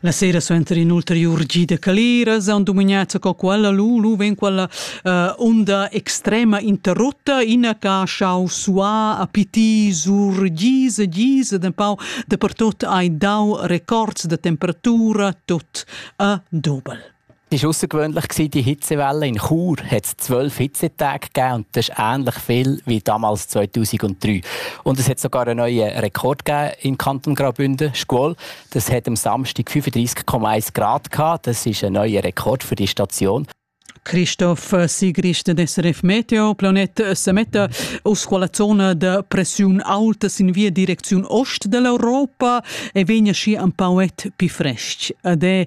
La sera suenter in ulteriur gi da caliras han dumagnats co quella lu lu ven quella uh, unda extrema interrotta ina ca schau sua a piti sur gisa gisa de pau de per tot hai dau records de temperatura tot a dobel. Es außergewöhnlich gewesen, die Hitzewelle in Chur hat es zwölf Hitzetage gegeben und das ist ähnlich viel wie damals 2003. Und es hat sogar einen neuen Rekord gegeben im Kanton Graubünden, Squall. Das hat am Samstag 35,1 Grad gehabt. Das ist ein neuer Rekord für die Station. Christoph Sigrist SRF Meteo, Planet Sametta. Aus quella zona de pressiun alta sin via direcziun ost dell'Europa e vegna schi un pauet pi fresc. Ed è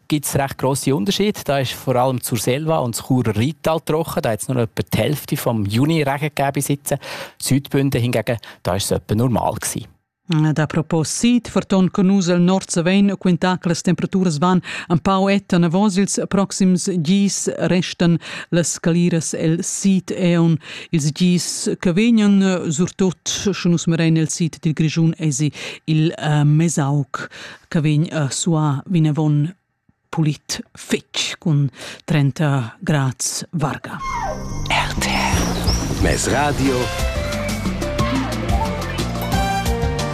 gibt es recht grosse Unterschiede. Da ist vor allem zur Selva und das Churer Rheintal trocken. Da hat es nur etwa die Hälfte vom Juni-Regen gegeben bis jetzt. Südbünden hingegen, da ist es etwa normal gewesen. Ad apropos Sid, forton conus el nord savein quintà che las temperaturas van un pau etta navos ils proxims gis restan las caliras el sid eon ils gis che vegnan surtut sche nus merain el sid dil Grischun esi il uh, Mesauc che vegn a suar vinavon pulit fitg cun 30 grads varga. RTR Mes Radio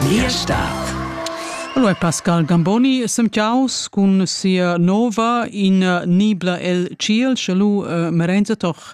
Liestadt Allora Pascal Gamboni semchaus cun sia nova in nibla el ciel, sche lu uh, merenza toch